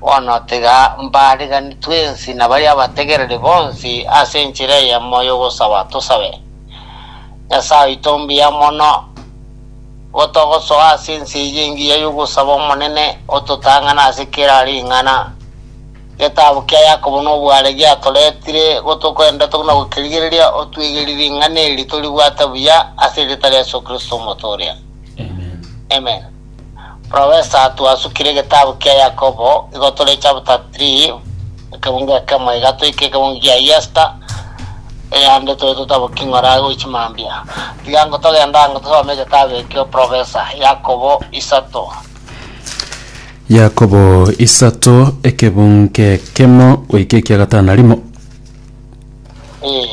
Bono tiga mbaariganeri twensi na baria abategereri bonsi ase enchera eyemo y'ogosaba tosabe. Nyasae oito ombuya mono, nigo togosoa ase ense eye engiya y'ogosaba Omonene ototang'ane ase kera ring'ana. Getabu kia Yakobo nobware giatoretire gotokwenda togima gokerigereria otwegerie ring'ana eri toribwate buya ase erieta ria Yeso Kristo Omotoria. Amen. Professor twasukire egetabu kia Yakobo igo tore chapter 3 ekebungo ekemo iga toike ekebungo kia Yesta eyande tore totaboki ng'ora agwo chimambia tiga ngo togenda ango tosome egetabu ekio Professor Yakobo isato Yakobo isato ekebungo ekemo goika ekia gatano na rimo.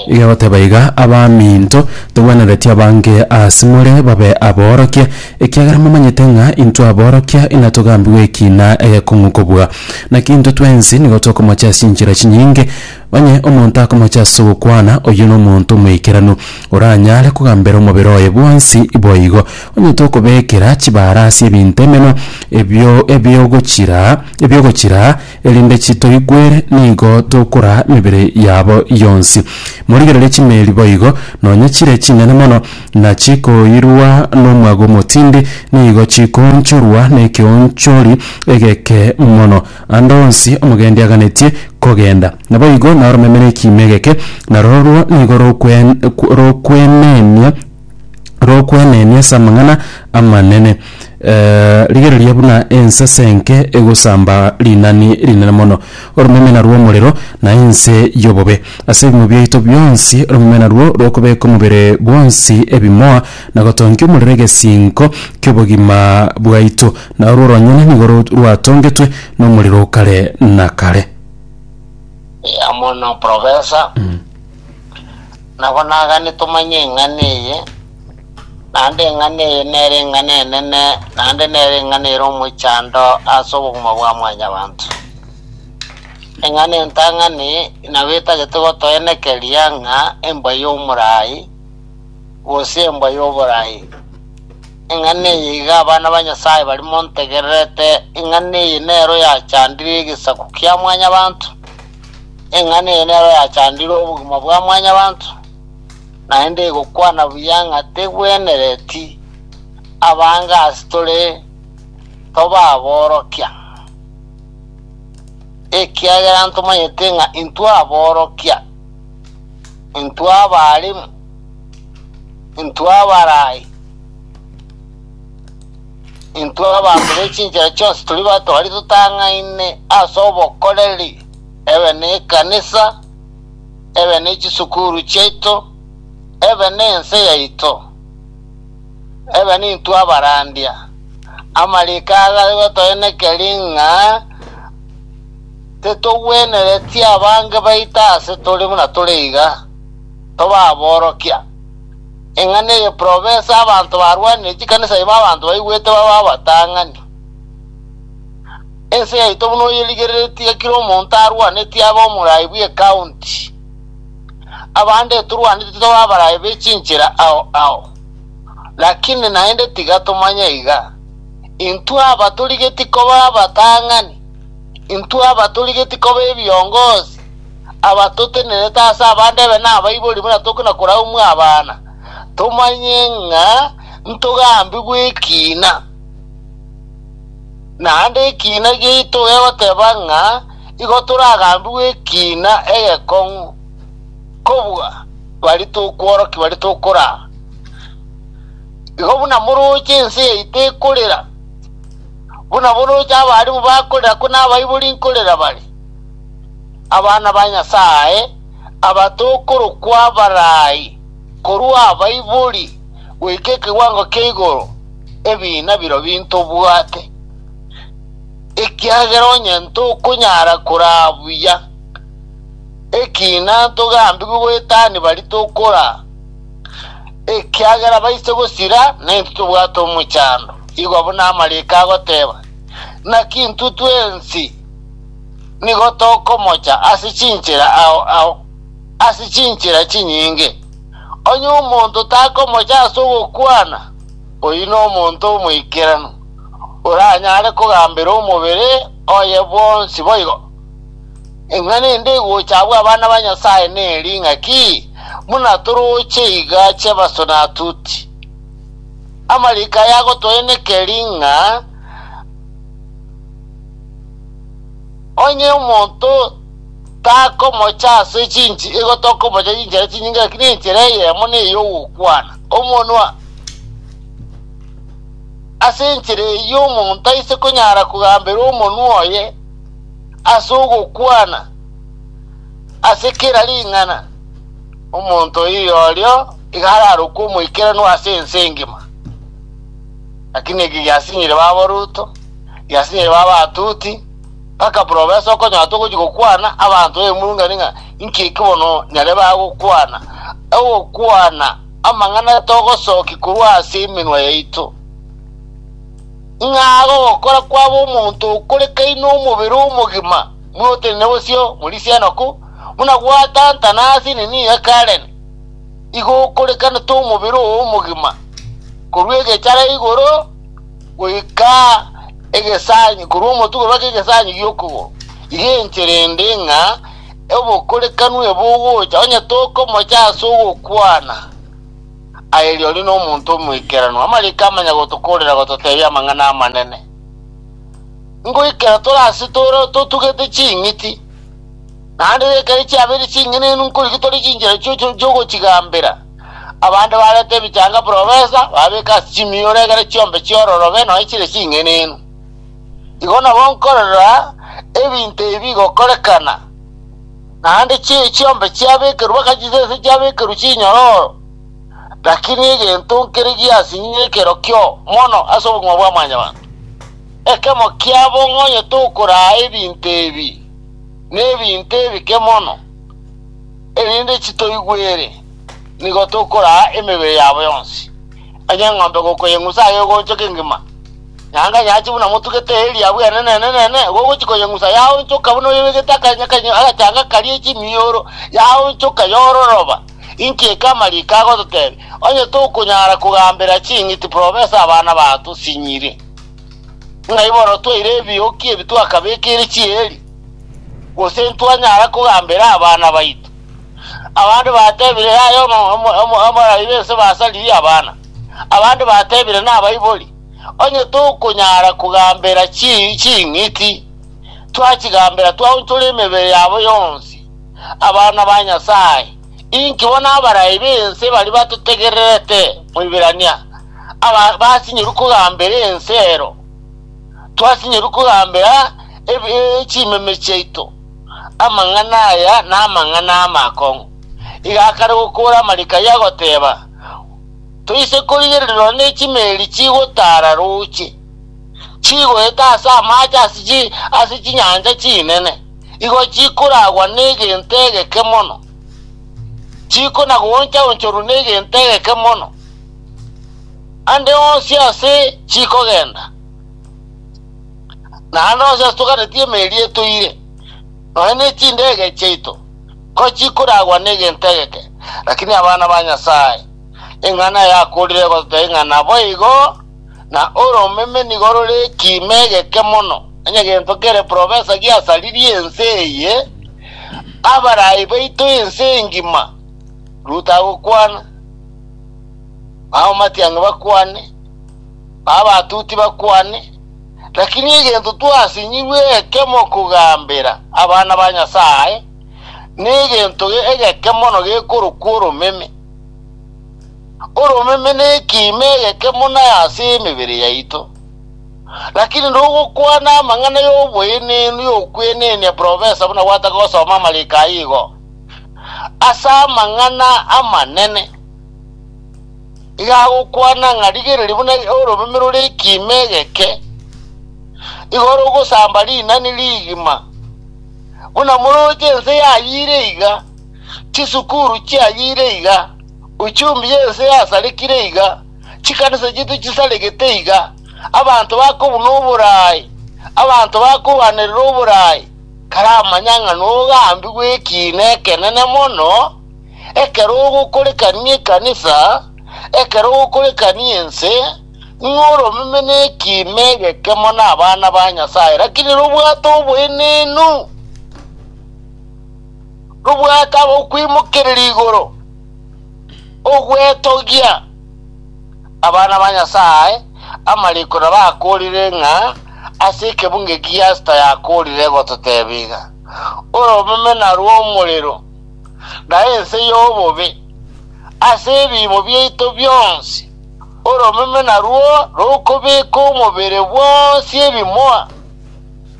Igagoteba iga, Abaminto, togwenereti abange asemore babe aborokia, ekiagera momanyete ng'a intwe aborokia inatogambigwe ekina egekong'u kobua. Naki intwe twensi nigo tokomocha ase enchera chinyinge, onye omonto akomocha ase ogokwana, oyio nomonto omoikeranu, oranyare kogambera omobere oye bwonsi. Boigo, onye tokobekera chibara ase ebinto emenwa ebio ebiogochira ebiogochira, Erinde chitoigwere nigo tokoraa emebere yabo yonsi. Morigererie chimeeri boigo, nonya chire chinene mono, na chikoirwa nomwaga omotindi, nigo chikoonchorwa nekeonchori egeke mono. Ande onsi omogendi aganetie kogenda, naboigo naoromeme nekiimo egeke, na rorwo nigo rokwenenia rokwenenia ase amang'ana amanene. Eh, rigereria buna ensese enke egosamba rinani rinene mono, oromemena rw'omorero na ense y'obobe. Ase ebimo biaito bionsi oromemena rwo rokobeka omobere bwonsi ebimoa na gotongia omorero egesinko ki'obogima bwaito, na orwo ronyene nigo ro- rwatongetwe nomorero o kare na kare. amo na Profesa Nabo nagane tomanye eng'ana eye, naende eng'ana eye nere eng'ana enene, naende nere eng'ana ere omochando ase obogima bwa mwanyabanto. Eng'ana entang'ani nabo etagete gotoenekeria ng'a embwa y'omorai, gose embwa y'oborai. Eng'ana eye iga abana ba Nyasae bari montegererete, eng'ana eye nero yachandire egesaku kia mwanyabanto. Eng'ana eye nero yachandire obogima bwa mwanyabanto, naende egokwana buya ng'a tegwenereti abange ase tore tobaboorokia, ekiagera ntomanyete ng'a intwe aboorokia, intwe abaalimu, intwe abarai, Intwe abanto be chinchera chionsi tiri bato baria totang'aine ase obokoreri, ebe nekanisa, ebe ne chisukuru chiaito, ebe nense yaito, ebe nintwe abarandia. Amariko aya gari gotoenekeri ng'a titogwenereti abange baito aase tore buna tore iga, toba aborokia. Eng'ana eye profesa abanto barwanire chikanisa ime abanto baigwete babe abatang'ani. Ense yaito buna oyerigereretie iga kera omonto arwaneti abe omorai bw'ecounty. Abande turwaneti tobe abarai be chinchera ao ao. Lakini naende tiga tomanye iga, intwe aba torigeti kobe abatang'ani, intwe aba torigeti kobe ebiongozi, abatotenerete ase abande ebe nabaibori buna toke na koraumwa abana, tomanye ng'a ntogambigwa ekina. Naende ekina giaito gegoteba ng'a igo toragambigwe ekina egekong'u kobua bari tokworokia bari tokoraa. Igo buna moroche ense yaito ekorera, buna boroche abarimu bakorera ko nabaibori nkorera bare. abana ba Nyasae aba tokorokwa abarai korwa abaibori goika ekewango kia igoro, ebiina birobio intobwate, ekiagera onye ntokonyara koraa buya, ekina ntogambigwe goetani baria tokoraa, ekiagera baise gosira, na intwe tobwate omochando. Igwa buna amariiko agoteba, Naki intwe twensi? nigo tokomocha ase chinchera ao ao, ase chinchera chinyinge. Onye omonto takomocha ase ogokwana, oyio nomonto omoikeranu, oranyare kogambera omobere oye bwonsi boigo. Ing'a nende egocha abwo abana ba Nyasae neri ing'aki, buna toroche iga chi'ebasuna tuti. Amariko aya agotoenekeri ng'a. Onye omonto takomocha ase chinchi, igo tokomocha chinchera chinyinge, lakini enchera eyemo ney'ogokwana. Omonwa ase enchera eyio omonto aise konyara kogambera omonwa oye ase ogokwana ase kera ring'ana, omonto oyo orio iga ararokwe omoikeranu ase ense engima. Lakini eke giasinyire baboruto. Yasirire b'abatuti, mpaka profesa okonyora togochia gokwana abanto b'emurungani ng'a inki eki bono nyare bagokwana, ogokwana amang'ana togosokia korwa ase emenwa yaito. Ng'aga ogokora kwabo omonto okore kaine omobere omogima, buna otenene bosio morisia enoku, buna gwatantana ase nini ya Karen, igo okorekanete omobere oo omogima, korwa egechara igoro, goika egesaanyi korwa omotuko mpaka egesaanyi gi'okogoro, iga enchera ende ng'a obokorekanu ebe ogocha, onye tokomocha ase ogokwana, aye rirorio nomonto omoikeranu. Amariiko amanya gotokorera gototeebia amang'ana amanene. Ngoikera tore ase tore totugete ching'iti, naende ekero chiabeire ching'enenu nkorigia tore chinchera chio chio- chi'ogochigambera. Abanto bareta ebichanga buna obesa, bababeka ase chimioro egere chiombe chiororobe nonya chire ching'enenu. Igo nabo nkorora ebinto ebi bigokorekana, naende chi- chiombe chiabekerwa baka chisese chiabekerwa chinyororo, lakini egento nkere giasinyire ekero kio mono ase obogima bwa mwanyabanto. Ekemo kiabo ng'onyete okoraa ebinto ebi, nebinto ebike mono. Erinde chitoigwe ere, nigo tokoraa emebere yabo yonsi, onye eng'ombe gokoyeng'usa aye ogoonchoka engima. Nyaanga nyache buna motugete eriabu enene enene, igo ogochia koyeng'usa yaonchoka buna oyebegete akanyakanya agachanga karia e chimioro, yaonchoka yororoba. Inki eke amariiko agototebia? Onye tokonyara kogambera ching'iti profesa abana bato sinyiri, ng'ai bororo twaire ebioki ebi twakabekeire chieri? Gose ntwanyara kogambera abana baito? Abande batebire, Yaya omorairi ense basaririe abana. Abande batebire, Nabaibori. Onye tokonyara kogambera ching'iti, twachigambera twaonchora emebere yabo yonsi. Abana ba Nyasae, inki bono abarai b'ense baria batotegererete? Moiberania, Basinyorwe kogambera ense ero. Twasinyorwa kogambera chimeme chiaito amang'ana aya namang'ana ama akong'u. Iga akare gokoora amarika ayio agoteeba, Toise korigererirwa ne chimeeri chigotaara rooche, chigoeta ase amaache ase chinyancha chinene, igo chikoragwa negento egeke mono, chikona-gooncha-onchorwa negento egeke mono. Ande onsi ase chikogenda, na ande onsi ase toganeti emeeri etoire, nonya ne chindege chiaito, ko chikoragwa negento egeke, lakini abana ba Nyasae, eng'ana yakorire egototebia ng'a naboigo, na oromeme nigo rore ekiimo egeke mono, onye gento kere profesa giasaririe ense eye, abarai baito ense engima, Ruto agokwana. Bao matiang'i bakwane, bao batuti bakwane, lakini egento twasinyigwe ekemo kogambera abana ba Nyasae negento egeke mono gekorokwa oromeme. Oromeme nekiima egeke mono ase emebere yaito. Lakini nogokwana amang'ana y'oboenenu y'okwenenia profesa buna gwataka gosoma amariko ayio igo. ase amang'ana amanene, iga agokwana ng'a rigereria buna oromeme rore ekiimo egeke, igo rogosamba rinani rigima. Buna moroche ense yayiire iga, chisukuru chiayiire iga, uchumbi y'ense yasarekire iga, chikanisa chiaito chisaregete iga, abanto bakobuna oboraai, abanto bakogwenerera oboraai, Karamanya ng'a nogambigwe ekiina ekenene mono, ekero ogokorekania ekanisa, ekero ogokorekania ense, ng'a oromeme nekiina egekemo nabana ba Nyasae, lakini nobwate oboenenu, nobwate abakwimokereria igoro, ogwetogia, Abana ba Nyasae, amariko nabo akorire ng'a ase ekebungo eki Yasta yakorire gototebia iga, Oromemena rw'omorero, na ense y'obobe, ase ebiimo biaito bionsi, oromemena rwo rokobeka omobere bwonsi ebimoa,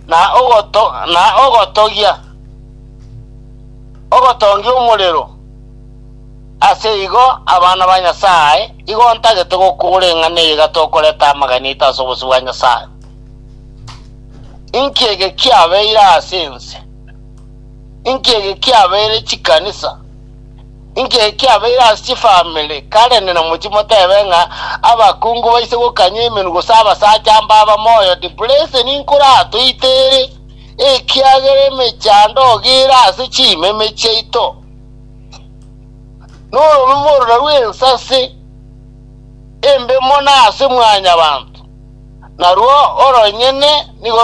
na ogoto, na ogotogia, ogotongia omorero, Ase igo, abana ba Nyasae, igo ntagete gokora eng'ana eye iga tokoreta amagena aito ase obosio bwa Nyasae. Inki ege kiabeire ase ense? Inki ege kiabeire chikanisa? Inki ege kiabeire ase chifamiri? Karende namochie motebe ng'a abakungu baise gokanya emenwa gose abasacha mbaba moyo depression nkoratoite ere, ekiagera emechando ogira ase chimeme chiaito. Norome morora rw'ensase embe mono ase mwanyabanto, narwo oronyene nigo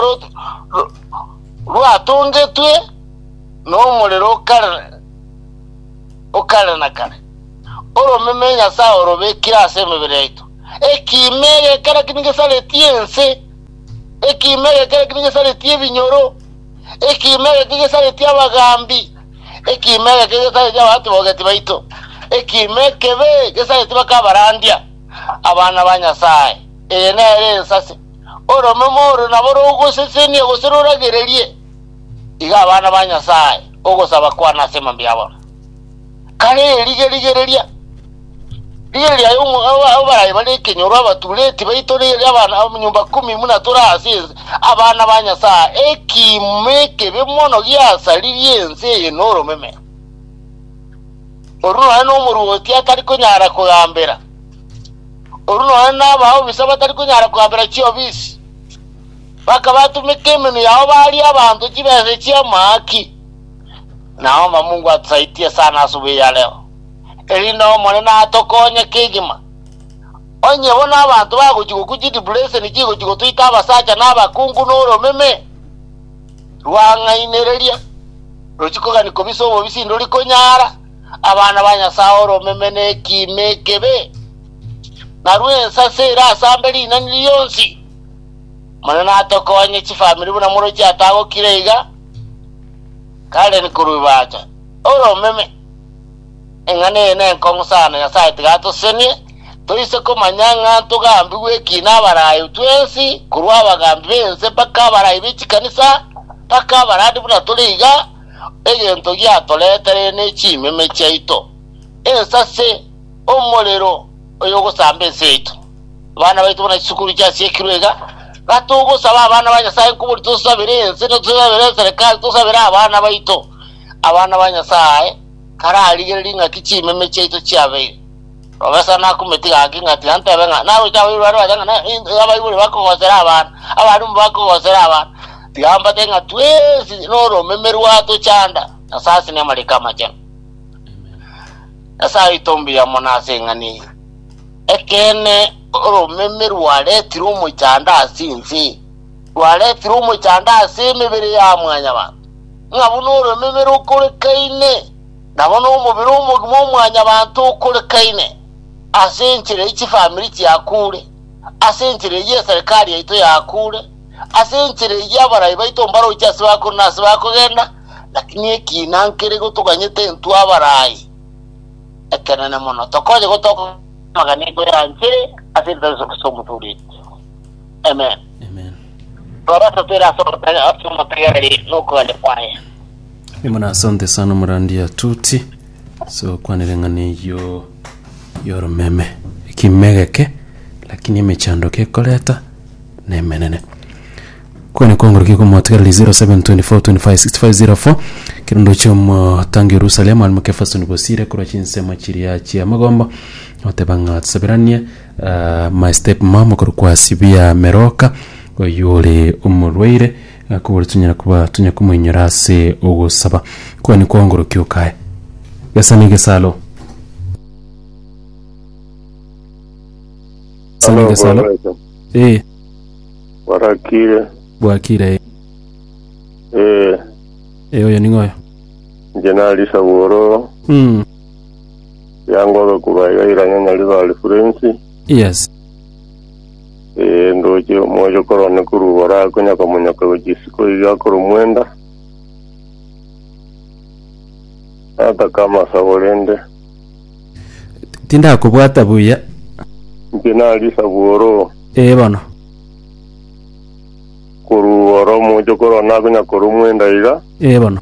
rwatongetwe nomorero o kare o kare na kare. Oromeme Nyasae orobekire ase emebere yaito, ekiimo egekara ki nigesareti ense, ekiimo egekara ki nigesareti ebinyoro, ekiimo egeke gesareti abagaambi. Ekiimo eke kegesareti abatibogeti baito, ekiimo ekebe gesareti bakabarandia abana ba Nyasae. Eye nere ensase. Oromeme oro nabo rogosesenia gose roragererie iga abana ba Nyasae ogosaba kwane ase mambia abo. Kare eri gerigereria. Rigereria aye omo- aba- abo baraye bare ekenyoro, abatureti baito, rigereria abana abanyomba ikomi buna tore ase ense, abana ba Nyasae, ekiimo ekebe mono giasaririe ense eye noromeme. Oru nonye nomoruoti atari konyara kogambera, oru nonye nabaobisa batari konyara kogambera chiobisi, bakabatumeka emenwa yao baria abanto chibesa chi'amaaki, nao Mamungu atosaitie sana ase obuya yareo. erinde Omonene atokonye kegima. Onye bono abanto bagochia gokwa chidibureseni chigochia gotoita abasacha na abakungu n'oromeme rwang'ainereria, rochiko gani kobisa obobisi ndori konyara abana ba Nyasae oromeme na ekiimo ekebe, na rw'ensase ere ase ambe rinani rionsi. Omonene atokonye chifamiri buna morochi atagokire iga, Karen korwa Ibata, oromeme. Eng'ana eye nenkong'u sana, Nyasae tiga atosenie, toise komanya ng'a ntogambigwe ki nabaraai twensi, korwa abagambi b'ense mpaka abaraai be chikanisa, mpaka abarandi buna tore iga, egento giatoretere ne chimeme chiaito, ensase, omorero oyogosamba ense yaito. Abana baito buna chisukuru chiasiekirwe iga, Gaki togosaba abana ba Nyasae nkoboria tosabere ense, na tosabere eserekari, tosabere abana baito. abana ba Nyasae kararigereri ing'aki chimeme chiaito chiabeire. Robe sana akumetiga gaki ng'a tintebe ng'a naroche abaibori bare bache ng'a na- in- abaibori bakogosera abana, abalimu bakogosera abana. Tiga mbate ng'a twensi noromeme rwato chanda, Nyasae ase namariko amachenu. Nyasae oito mbuya mono ase eng'ani eye. Ekeene oromeme rwaretire omochando ase ense, rwaretire omochando ase emebere ya mwanyabanto. Ng'a buna orememe rokorekaine, nabo nomobere omogima o mwanyabanto okorekaine, ase enchera eye chifamiri chiakuure, ase enchera eye eserekari yaito yakuure, ase enchera eye abarai baito mbaroche ase bakure na ase bakogenda, lakini ekiina nkere gotoganyete intwe abarai. Ekenene mono, tokonye gotoka amagana igo ya nchera ase ritabe ase omotoreti. Amen. Amen. Rora topera ase omotari ase omotari are n'okogania kwaye. Imana asante sana omorandi atuti ase gokwana ereng'ana eyo yoromeme ekimegeke lakini emechandoke ekoreta na emenene kwane kwangorokia komotigara 0724256504 kirundo chia omotangi Yerusalemu alimo kefasoni bosire korwa chinsemo chiria chia amagombo oteba ng'a tusaberanie My step mom okorokwa Sibia Meroka oyio ore omorwaire akobore tonyara koba tonya komoinyora ase ogosaba kwane kwaongorokia okae gesa ne gesalo gesa ne gesalo Aloboreso, eh barakire, bwakire eh. ee, eh oyo ning'oyo nje nari saboro, mm. Riangobe korwa iga iranyanyare bare furensi. Yes. Ee, ndoche omoyo korone korwa igoro aa konyoka monyoka gochia isiko iga korwa omwenda. Nataka amasabo rende. Tindakobwata buya. Inche nari isabu oro. Ee bono. Korwa igoro omoyo korone akonyoka korwa omwenda iga. Ee bono.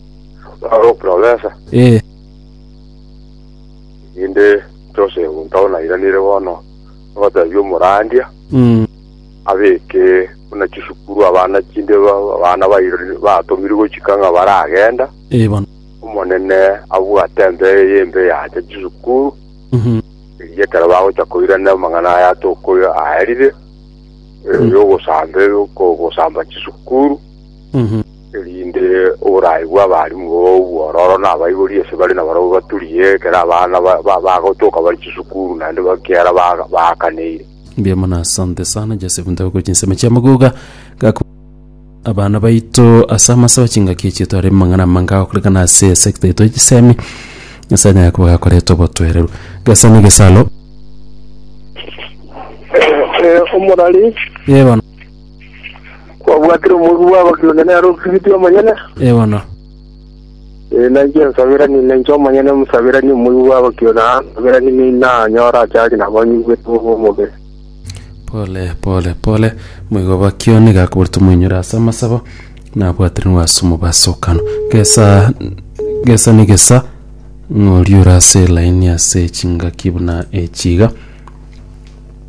Aro oprofesa. Ee. Inde Joseph ntao nairanire bono ogoteebia omorandia Mm. abeke buna chisukuru abana chinde ba- abana bairori batomirwe gochika ng'a baragenda. Ee bono. Omonene abwate embe eye embe yacha chisukuru Mhm. eria ekero bagocha koirana amang'ana aya atokoyo aerire eh, Mm. yogosambe yoko- gosamba chisukuru Mhm. erinde oboraaibu abaalimu b'obobuya ororo na abaibori ase bare na barabwo baturie, ekero abana ba- ba- bagotoka bare chisukuru naende bakiara ba- baakaneire. Mbuya mono asante sana Joseph Ntabuko chinsemo chia magoga gako abana baito ase amasaba chingaki echi etware amang'ana amange agokorekana ase esecta yaito ya chisemi Nyasae anyare koba gakoreta obotwereru gasani gesalo Omorari. Ye bono. Kwabwatire omorua bw'abakristo nere okiriti omonyene? Ee bono. Ee, nainche ensaberani nainche omonyene omosaberani omorua bw'abakristo na ansaberani nei nanyore achache nabo anyigwete bobe omobere. Pole, pole, pole. Moigo bakio nigo akoboretwe moinyore ase amasabo, na abwaterenwe ase omobasokano. Gesa, gesa ni gesa, ng'ori ore ase elaini ase chingaki buna echi iga.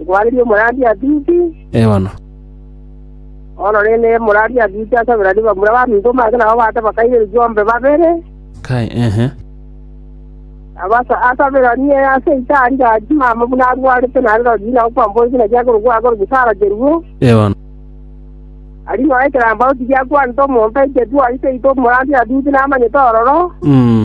Nkwanerie omoradi Agripi, Ewana. Bono rende omoradi Agripi asaberanie bamura b'aminto make nabo baate bakaire ebikombe babere, Kai, ehe. abasa asaberanie ase itaari ya chimama buna arwarete naende rirorio inao kwambora ekina kiaye korokwa aa korokwa Sara kerue. Ewana. Aria inao ekerambao tigiakwanete omonto aike twarite itwe omoradi Agripi namanyete ororo. Mm.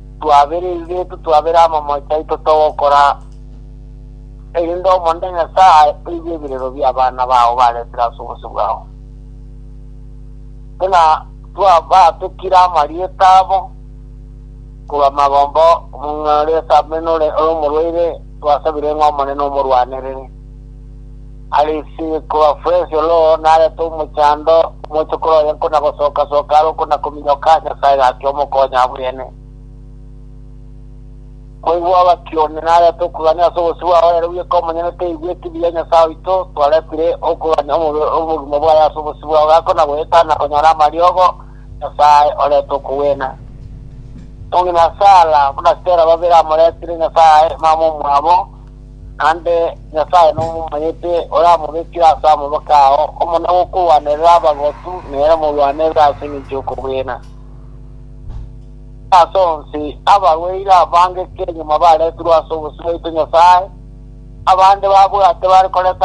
Twabere ebibetu, twabere abamoyo taito togokora, erinde Omonene Nyasae oigwe ebirero bi'abana bao baretire ase obosio bwao. Buna twabaatokire amarieta abo korwa magomba, omong'ina ore ase Amenore ore omorwaire, twasabire ng'a Omonene omorwanerere. Arisi korwa Fresio oro narete omochando, omochokoro oye nkona-gosoka-soka are okona-kominyoka, Nyasae gachia omokonya abwene. Koigwa abakioni narete okogania ase obosio bwao, ere bweka omonyene toigweti buya Nyasae oito, twaretire okogania omobere omogima bwaye ase obosio bwao, gakona-goeta na konyora amariogo, Nyasae orete okogwena. Omong'ina Sara buna Tera babere amoretire Nyasae, mama omwabo, Naende Nyasae nomomanyete, oramobekire ase amaboko ao, omona gokorwanerera abagotu, nere omorwanerere ase engencho y'okobwena. Ase onsi, abarwaire abangeke nyuma baretirwe ase obosio bwaito Nyasae, abande babwate bare korenta